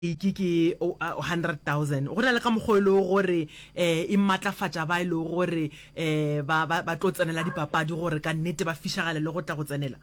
ke ke o- a- 100,000 go na le ka mokgwa o e lego gore um e maatlafatša ba e lego gore um ba ba- ba tlo tsenela dipapadi gore ka nnete ba fišagale le go tla go tsenela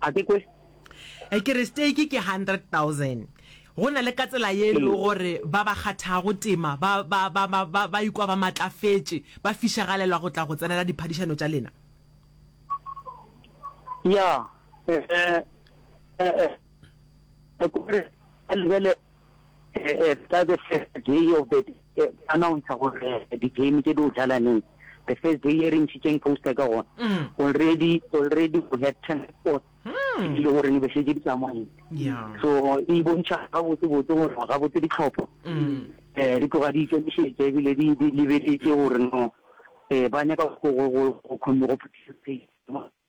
a ke kwe Eh, ke re stake ke 100,000 go na le ka tsela ye e lego Ee. gore ba ba kgathago tema ba ba- ba- ba- ba- ba ikwa ba maatlafetše ba fišagalelwa go tla go tsenela diphadišano tša lena ya eh, eh, eh, eh, gore a lebele ka the first day of the announce gore di-game tse di o jalaneng the first day e re ntšhitseng poster ka gona mm. already already we had ten sports mm. ile gore ne be šetse di tsamaile so e bontšha gabotsebotse gore gabotse ditlhopho um di tloga di ikemišetse ebile di lebeletse gore no um ba nyaka go participate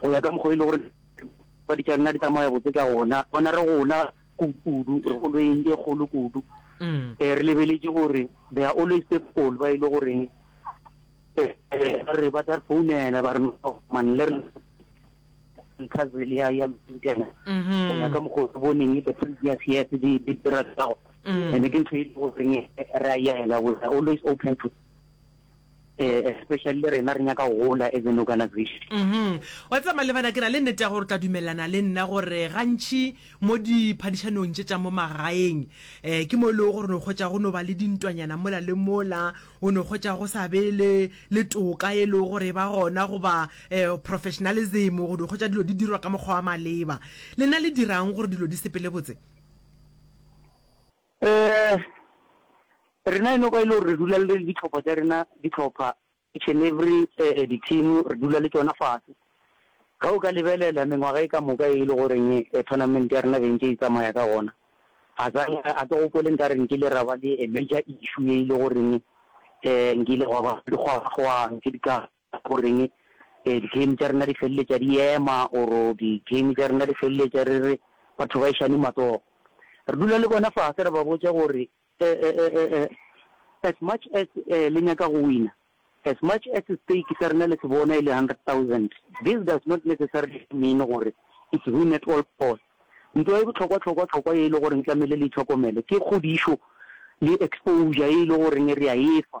go ya ka mokgwa e le gore ba ditša nna di tsamaya botse ka gona bona re gola kudu re go lweng e kgolo kudu um re lebeletse gore they are always people ba e le goreng re ba tla founela ba re man le re cousin ya ya mtena go ya ka mokgwa o boneng the previous years di di dira tsa go and ke ntho e le goreng ra yela we are always open to eh, especially le rena re nyaka go gola as an organization mhm wa tseba malebana ke na le nnete ya gore o tla dumelelana le nna gore gantšhi mo diphadišanong tše tša mo magaeng um ke mo e lego gore no kgwetsa go no ba le dintwanyana mola le mola o no kgwetsa go sa be le le toka e lego gore e ba gona goba um professionalism go no kgwetsa dilo di dirwa ka mokgwa wa maleba le na le dirang gore dilo di sepele botse Rena eno kwa e le gore re dula le ditlhopha tša rena, ditlhopha each and every di-team re dula le tšona fase. Ge o ka lebelela mengwaga e ka moka e le goreng tournament ya rena be ntše e tsamaya ka gona, ga sa a ke gopole nka re nkile ra ba le a major issue e le goreng nkile gwa ba gwa ntše di ka Goreng di-game tša rena di feleletša di ema or di-game tša rena di feleletša re re batho ba ešane matsogo? Re dula le bona fase ra ba botša gore as much as le nyaka go wina, as much as stake sa rena le se bona e le hundred thousand, this does not necessarily mean gore it's win at all cost. Ntwa e bohlokwa-hlokwa-hlokwa ye e le goreng tlamehile le itlhokomele ke kgodišo le exposure ye e le goreng re a efa.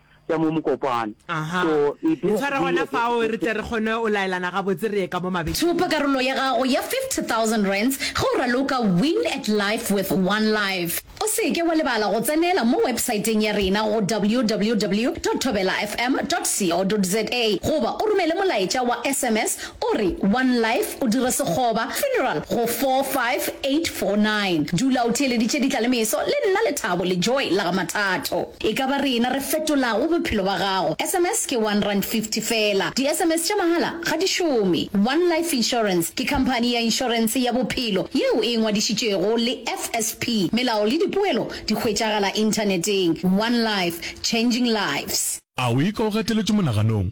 tša mo mokopana. Aha. So it E tshware gona fao re tle re kgone o laelana gabotse re ye ka mo mabe. Thopa karolo ya gago ya 50,000 rands ge o raloka Win at Life with One Life. O se ke wa lebala go tsenela mo websaeteng ya rena go www dot thobelafm dot co dot za goba o romele molaetša wa sms o re One Life o dire sekgoba Funeral go 45849. Dula o theeleditše ditla le meso le nna Lethabo le Joy la ga Mathato. E ka ba rena re fetolago bophelo ba gago. SMS ke one rand fifty fela. Di SMS tša mahala ga di šome. One Life Insurance ke khamphani ya inšorense ya bophelo yeo e ngwadišitšego le FSP. Melao le dipoelo di hwetšagala inthaneteng. One Life, Changing Lives. A o ika o gateletšwe monaganong?